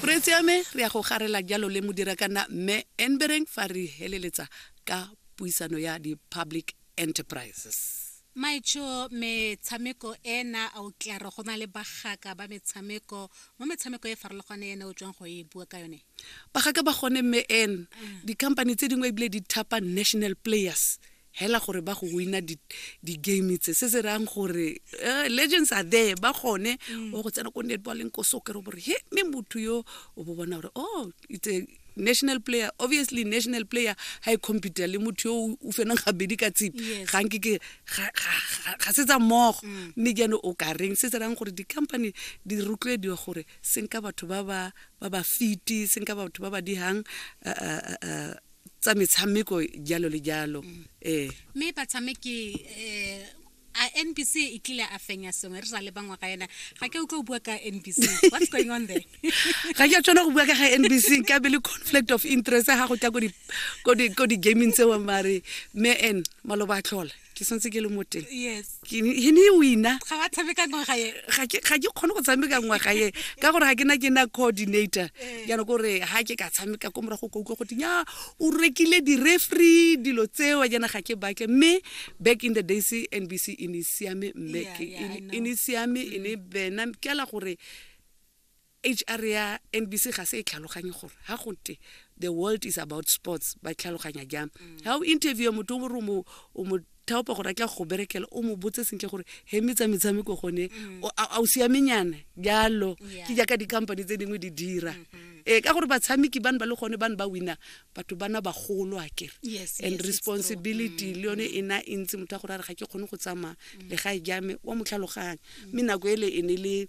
Re tseyame re ya go garela jalo le Modirakanna Mme Enbereng fa re heleletsa ka puisano ya di-public enterprises. Maitsho, Metshameko ena a o tlare go na le bagaka ba metshameko mo metshameko e farologane ene o tswang go e bua ka yone? Bagaka ba gone Mme Ann, di-company tse dingwe ebile di thapa national players hela gore ba go wina di-game tse se se rayang gore eh, legends are there ba gone mm. o go tsena ko netballeng ko soccer o bore he mme motho yo o bo bona gore oh it's a national player obviously national player ha e computer le motho yo o fenang gabedi ka tsipi ga nke ke ga se tsa mmogo mm. mme jaanong o ka reng se se rayang gore di-company di rotloediwa gore senka batho ba ba fiti senka batho ba ba dihang eh, eh, tsa metshameko jalo le jalo mm. ee mme batshameki um a nbc e tlile a fenya sengwe re sa le bangwe ga ena ga ke utlwa o bua ka nbc what's going on there ga ke a tshwana go bua ka ga nbc ka be le conflict of interest ga go tla ko di-gaming tseo mare me en maloba a tlhola ke santse ke le mo teng yes ke ne he ne e wina ga wa tshameka ngwaga e ga ke ga ke kgone go tshameka ngwaga e ka gore ga ke na ke na coordinator Eh. jaanong kore ga ke ka tshameka ko morago ka utlwa goteng ya o rekile di-refree dilo tseo jaana ga ke batle mme back in the days nbc e ne e siame mme Yeah, ke- yeah, I e ne- e ne e siame e ne bena ke ala gore HR ya NBC ga se e tlhaloganye gore ha go te the world is about sports ba tlhaloganya jang ha mm. o interview motho o re o mo thaopa gore a tla go berekela o mo botse sentle gore he metsa metshameko gone mm. a o siamenyana jalo ke jaaka di-company tse dingwe di dira mm-hmm. ee ka gore batshameki bane ba le gone bane ba wina batho bana bagolo a kere and responsibility mm. le yone e na e ntsi motho a gore a re ga ke kgone go tsamaya le ga e jame wa motlhaloganya mme nako ele e ne le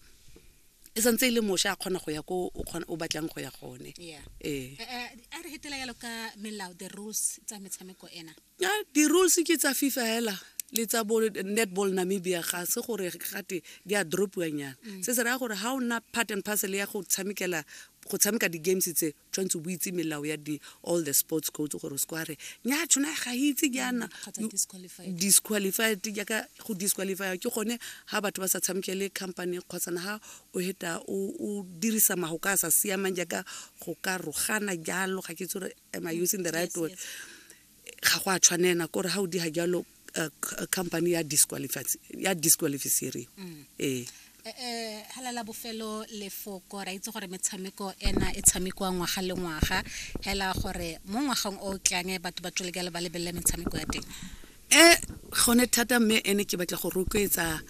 e santse e le mosha a kgona go ya ko o batlang go ya gone ee eh, eh, a re hetela yalo ka melao the rules tsa metshameko ena ya di-rules ke tsa fifa hela le tsa bo netball namibia ga se gore gate di a dropiwanyana mm. se se raya gore ga o nna part and parcel ya go tshamekela go tshameka di-games tse tshwanetse bo itse melao ya di all the sports codes gore se kwa re nya tshona ga itse jaana mm, disqualified jaaka go disqualifya ke gone ga batho ba sa tshameke le company kgotsana ga o heta o dirisa mago ka a sa siamang jaaka go ka rogana jalo ga ke itse gore am i using the right word ga go a tshwanela kore ga o diga jalo eh, company ya disqualifiseriwa mm. ee eh, eh, hala la bofelo lefoko ra itse gore metshameko ena e tshamekiwa ngwaga le ngwaga hela gore mo ngwageng o tlang batho ba tswele kale ba lebelele metshameko ya teng um gone thata mme ene ke batla go rotloetsa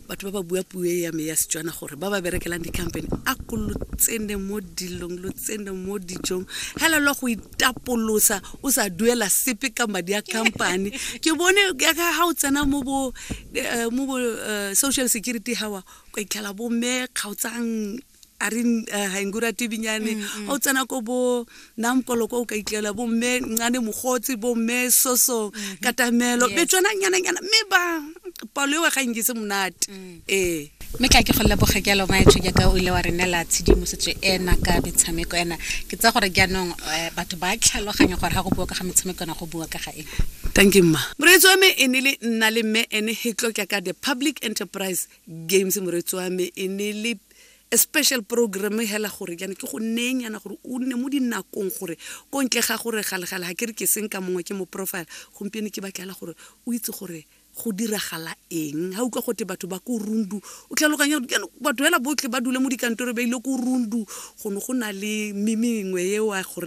batho ba ba bua puo e ya me ya setswana gore ba ba berekelang di-company a ko lo tsene mo dilong lo tsene mo dijong hela lo go itapolosa o sa duela sepe ka madi a company ke bone ya ka ga o tsena mo bo eh, mo bo eh, social security hawa kwa itlhela bo me kgaotsang a re uh, ga enku rate binyane mm, mm. o tsena ko bo namkolo kwa o ka itlela bo mme ncane mogotsi bo mme soso mm-hmm. katamelo be tswana nyananyana mme ba palo ewa ga nkise monate mm. ee mme ka ke go leboge ke alo maetsho jaaka o ile wa re neela tshedimosetso ena ka metshameko ena ke tsa gore jaanong eh, batho ba tlhaloganya gore ga go bua ka ga metshameko ena go bua ka ga eng thank you mma moreetsi wa me e ne le nna le mme ene hetlokya ka the public enterprise games moretsi wa me e ne le a special program hela gore jana ke go neng yana gore o nne mo dinakong gore ko ntle ga gore galegale ga ke re ke seng ka mongwe ke mo profile gompieno ke batlela gore o itse gore go diragala eng ga utlwa gote batho ba ko rundu o tlhaloganya batho fela botlhe ba dule mo dikantoro ba ile ko rundu go ne go na le mimengwe ewa gore